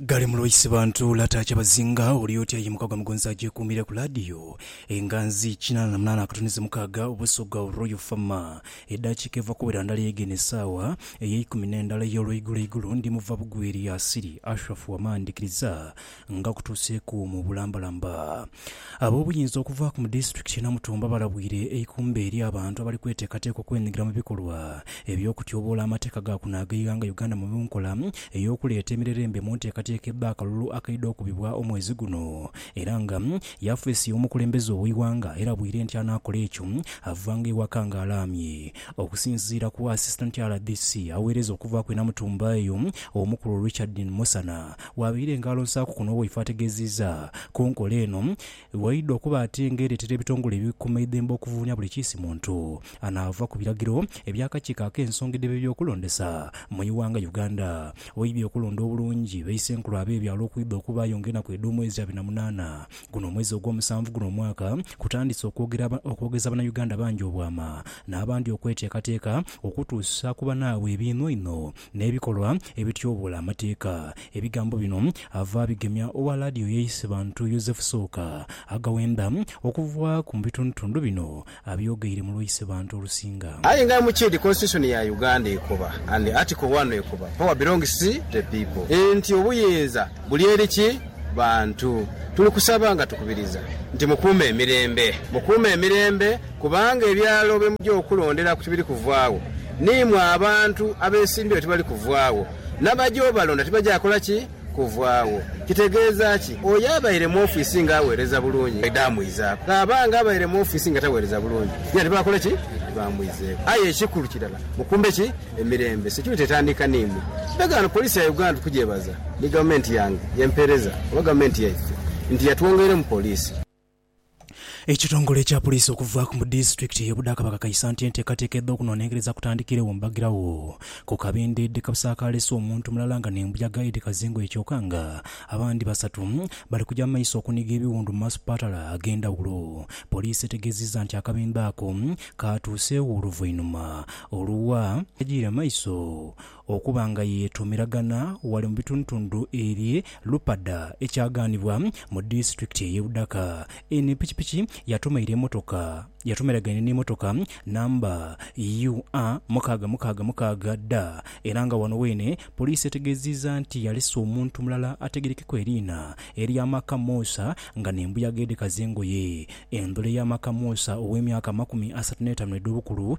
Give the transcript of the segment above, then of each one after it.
Ghale mu Lwaisi bantu lata kyabazinga oli oti ayimuka gwa Mugonza agyekuumire ku laadiyo enganzi kinaana na munaana akatunhizo mukaaga Obusogga Royal Fama Edaakiika eva kuwera ndala yeegenda esaawa eyeikumi n'endala ey'olweigulo igulo Ndi muva bugweri asili Ashraf Wama ndikiriza nga kutuuseeku mu bulambalamba Ab'obuyinza okuva ku mu disitulikiti e Namutumba balabwire eikumbe eri abantu abali kweteekateeka okwenyigira mu bikolwa eby'okutyoboola amateeka ga kuno ag'eighanga Uganda mu nkola ey'okuleeta emirerembe mu nteekateeka ebba akalulu akaidha okubibwa omwezi guno era nga yafeesi y'omukulembeze ow'eighanga erabwire nti anaakola ekyo avanga ewaka nga alaamye. Okusinziira ku Assistant rdc aweereza okuva ku e Namutumba eyo, Omukulu Richard Musana, Waabaire engaalo nsaaku kuno waife ategeziiza ku nkola eno waidha okuba ate nga ereetera ebitongole ebikuuma eidhembe okuvuunia buli kiisi muntu anaava ku biragiro eby'akakiiko ak'ensonga edh'ebyokulondesa mu iwanga Uganda waidhi okulonda obulungi baisenkulu ab'ebyalo okwidha okubaayo nga enaku edh'omwezi abiri na munaana guno omwezi ogw'omusanvu guno omwaka kutandise okwogera okwogeza banauganda bangi obwama n'abandi okweteekateeka okutuusa ku banaabwe ebiinhoinho n'ebikolwa ebityoboola amateeka. Ebigambo bino ava abigemya owa laadiyo y'eisi bantu Yozefu Sooka, aghawenda okuva ku mu bitundutundu bino abyogeire mu lw'eisi bantu olusinga. Aye nga mukyedi constitution ya Uganda ekoba and article one ekoba power belongs to the people nti obuyinza buli eri ki bantu. Tuli kusaba nga tukubiriza nti mukuume emirembe, mukuume emirembe. Kubanga ebyalo bye muja okulonderaku tibiri kuvaagho, n'imwe abantu abeesimbyeyo tibali kuvaagho, n'abaja obalonda tibaja kola ki? Kuvaagho. Kitegeeza ki? Oyo abaire mu ofiisi ng'aweereza bulungi, bw'aidha amwizaaku. Bw'aba ng'abaire mu ofiisi nga taweereza bulungi, yena tibakole ki? Tibamwizeeku. Aye ekikulu kirala, mukumbe ki? Emirembe. Security etandika n'imwe. Ndagaano Poliisi ya Uganda tukugyebaza ni Gavumenti yange y'empeereza oba Gavumenti yaife nti yatwongeiremu Poliisi. Ekitongole ekya Puliisi okuvaaku mu disitulikiti ye Budaa kabakakaisa nti enteekateeka edh'okunonenkereza kutandikiiregho mu Bagiragho ku kabindho edhikasaakaalesa omuntu mulala nga n'embuyaga edhikaza engoye kyoka nga abandi basatu bali kuja mu maiso okuniga ebiwundu mu masupatala ag'endhawulo. Poliisi etegeezizza nti akabindho ako kaatuuseegho oluvainhuma olwa. Agiire mu maiso Okuba nga yeetuumiragana ghale mu bitundutundu eby'e Lupada ekyagaanibwa mu disitulikiti ey'e Budaka, eno epikipiki yatumaire emotoka yatumiragaine n'emotoka namba UA mukaaga mukaaga mukaaga da era nga wano weene poliisi etegeeziiza nti yalese omuntu mulala ategerekeku eriina erya Maka Musa nga n'embuyaga edhekaza engoye. Endhula eya Maka Musa ow'emyaka amakumi asatu n'etaanu edh'obukulu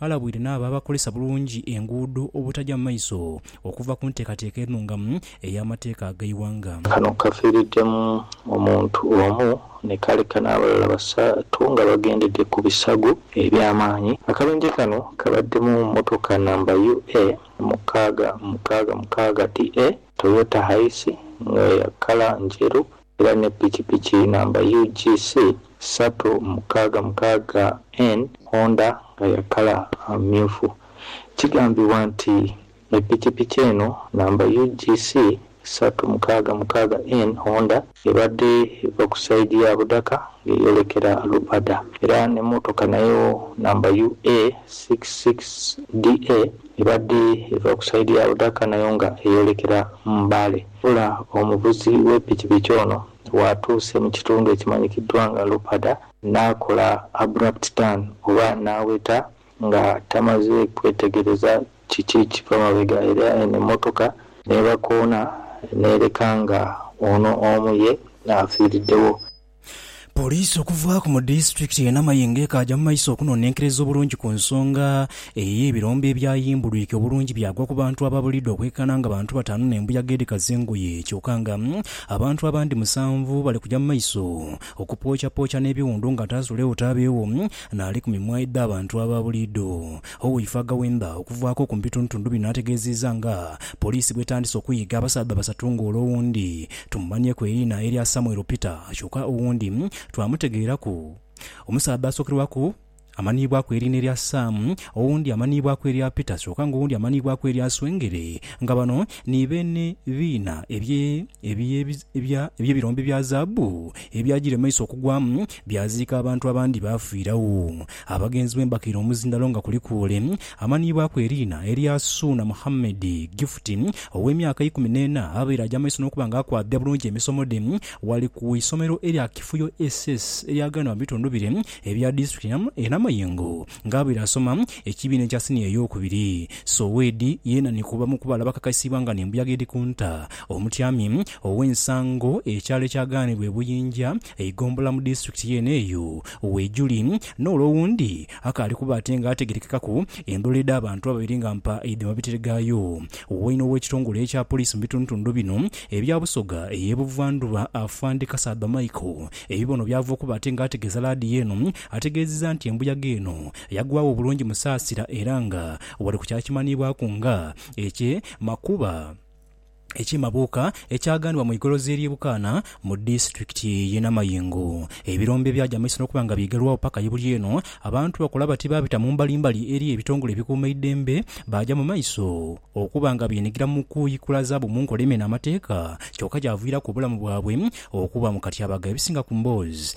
Alabwire n'abo abakozesa bulungi enguudo obutagya mu maiso okuva ku nteekateeka enhungamu ey'amateeka ag'eighanga. Kano kaviiriddemu omuntu omu ni kaleka n'abalala basatu nga bagendedde ku bisago eby'amaanyi. Akabenje kano kabadde mu mmotoka namba UA mukaaga mukaaga mukaaga DA, Toyota Hiace nga ya kkala njeru. era ne pikipiki namba UGC satu mukaaga mukaaga en Honda nga ya kala myufu. Kigambibwa nti epikipiki eno namba UGC satu mukaaga mukaaga en Honda ebadde eva ku saidi ya Budaka nga eyolekera Lupada era ne motoka nayo namba UA six six DA ebadde eva ku saidi ya Budaka nayo nga eyolekera Mbale. Wabula omuvuzi w'epikipiki ono bw'atuuse mu kitundu ekimanyikiddwa nga Lupada n'akola abrupt turn oba n'aweta nga tamaze kwetegereza kiki kiva mabega era eno emmotoka n'ebakoona n'ereka nga ono omu ye afiiriddewo. Poliisi okuvaaku mu disitulikiti ye Namayingo ekaaja mu maiso okunonenkereza obulungi ku nsonga eye ebirombe ebyayimbulwike obulungi byagwa ku bantu ababulidde okwekana nga bantu bataanu ne mbuyaga edhikaza engoye kyoka nga abantu abandi musanvu bali kuja mu maiso okupookyapokya nebiwundu nga Tazuleu Tabewo nali ku mimwa edha bantu ababulidde Oweifo Agawemba okuvaako oku mubitundutundu bino ategeziiza nga poliisi bwetandise okuyiga abasaadha basatu nga ole owundi tumumanhyeku eriina erya Samuel Peter kyoka owundi twamutegeeraku Omusaadha asokerwaku amanhiibwaku eriina erya Sam, owundi amanhiibwaku erya Peter kyoka nga owundi amanhiibwaku erya Swengere nga bano ni beene biina ebye ebirombe bya zaabu ebyajire mu maiso okugwamu byaziika abantu abandi baafiiragho. Abagenzi bwembakiire omuzindalo nga kuliku ole amanhiibwaku eriina erya Suuna Muhammed Gifuti ow'emyaka eikumi n'ena abaire agya maiso n'okuba nga akwabya bulungi emisomo dhe ghali ku isomero erya Kifuyo SS erya ghanho mu bitundu bire ebya disitulikiti ye Namayengo nga abaire asoma ekibiina ekya siniya ey'okubiri. Sowedi yeena ni ku bamu ku bale abakakaisiibwa nga n'embuyaga edhikunta omutyami ow'ensango ekyalo ekyagaanibwa e Buyinja Eighombolola mu disitulikiti yeene eyo weiguli, n'ole owundi akaali kuba ate nga ategerekekaku endhula edh'abantu ababiri nga mpa idhi mabitire gaayo. Waine ow'ekitongole ekya poliisi mu bitundutundu bino ebya Busoga ey'e Buvandhuba, Afande Kasaadha Michael ebibono by'ava okuba ate nga ategeeza laadiyo eno, ategeezizza nti embuyaga eno yagwagho bulungi musaasira era nga wali ku kyakimanhiibwaku nga ekye Makuba. eky'emabuuka ekyaghanibwa mu igolozi ery'e Bukaana mu disiturikiti y'e Namayingo. Ebirombe byagya mu maiso n'okuba nga byegerwagho paka ye buli eno, abantu bakola bati baabita mu mbalimbali eri ebitongole ebikuuma eidembe baagya mu maiso okuba nga beenhigira mu kuikula zaabu mu nkola emena amateeka kyoka kyaviiraku obulamu bwabwe okuba mu katyabaga. Ebisinga ku mboozi